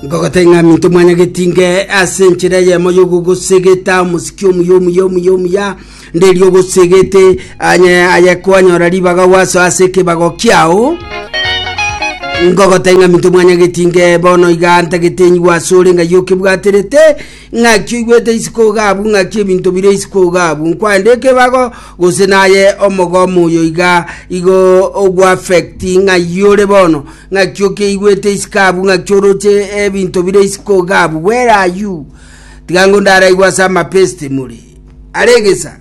Nkogoteng'amia intwe mwanyageti nge ase enchera eyemo y'ogogosegeta omosiki omuya omuya omuya omuya nderi ogosegete anye aye kwanyora ribaga gwaso ase ekebago kiao nkogoteng'amia intwe mwanyageti nge bono iga ntagete enyigwa ase ore ng'ai okebwaterete Ng'aki oigwete isiko iga abwo? Ng'aki ebinto bire isiko iga abwo? Nkwande ekebago, gose naye omogomo oyo iga igo ogoaffecti ng'ai ore bono? Ng'aki okeigwete isiko abwo? Ng'aki oroche ebinto bire isiko iga abwo? Where are you? Tiga ngo ndaraigwe ase amapeste more. Are egesa.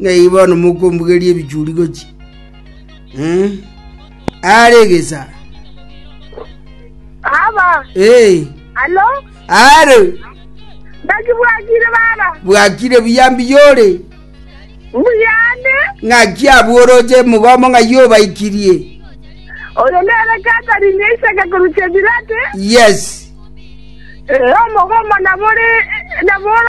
Ng'ai bono mokombugeria ebichuri gochia aare egesa? Baba, Ee, alo, aare naki bwakire baba, bwakire buya mbiyore mbuyane, ng'aki abworoche mogomo ng'ai obaikirie oyo nere Catherine Isaac korusia Birate, yes Eh, omogomo nabore, nabore,